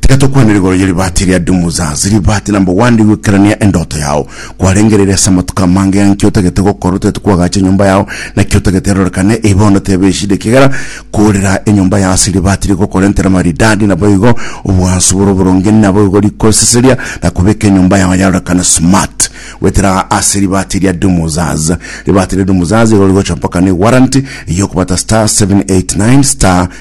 Tiga tokwanere igoro ye ribaati eria Dumuzaz, ribaati na mbogwandi goikerania endoto yao. Kwarengereire ase amatuko amange ng'a nki otagete gokora otagete kwagacha enyomba yao, na ki otagete erorekane, eye bono tebe eshida ekiagera koorera enyomba yao ase ribaati rigokora entera maridadi, naboigo obwansu bore oboronge naboigo rikoseseria na kobeka enyomba yao yarorekane smart. Goetera ase ribaati eria Dumuzaz. Ribaati ria Dumuzaz igoro rigocha mpaka ne warranty ey'okobata star 789 star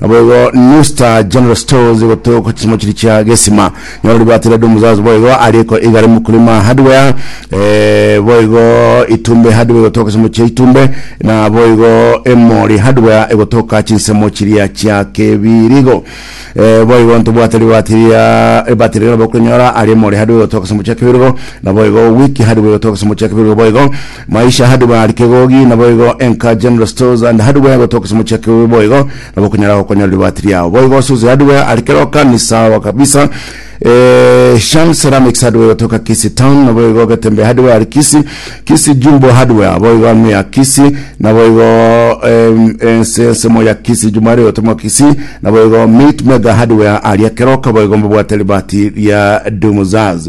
Naboigo Newstar General Stores gotoka chisemo chiri chia gesima nyoro ribwate Red Muzazi boigo ariko igare Mkulima Hardware eh, boigo Itumbe Hardware gotoka chisemo chia Itumbe na boigo Emori Hardware egotoka chinsemo chiria chia Kebirigo eh, boigo ntobwate ribwate ria ribate riria nabo konyora ari Emori Hardware gotoka chisemo chia Kebirigo na boigo Wiki Hardware gotoka chisemo chia Kebirigo boigo Maisha Hardware ari kegogi naboigo enka General Stores and Hardware gotoka ase omocheke oyo boigo nabo okonyara gokonyora ribati riao boigo ase Ozi Hardware ari keroka ni sawa kabisa eh, Shan Ceramics Hardware gotoka Kisii Town naboigo Getembe Hardware ari Kisii Kisii Jumbo Hardware boigo amo ya Kisii naboigo em, ense ensemo ya Kisii Jumari gotomo Kisii naboigo Meat Mega Hardware aria keroka boigo mbabwate ribati ria Dumuzaz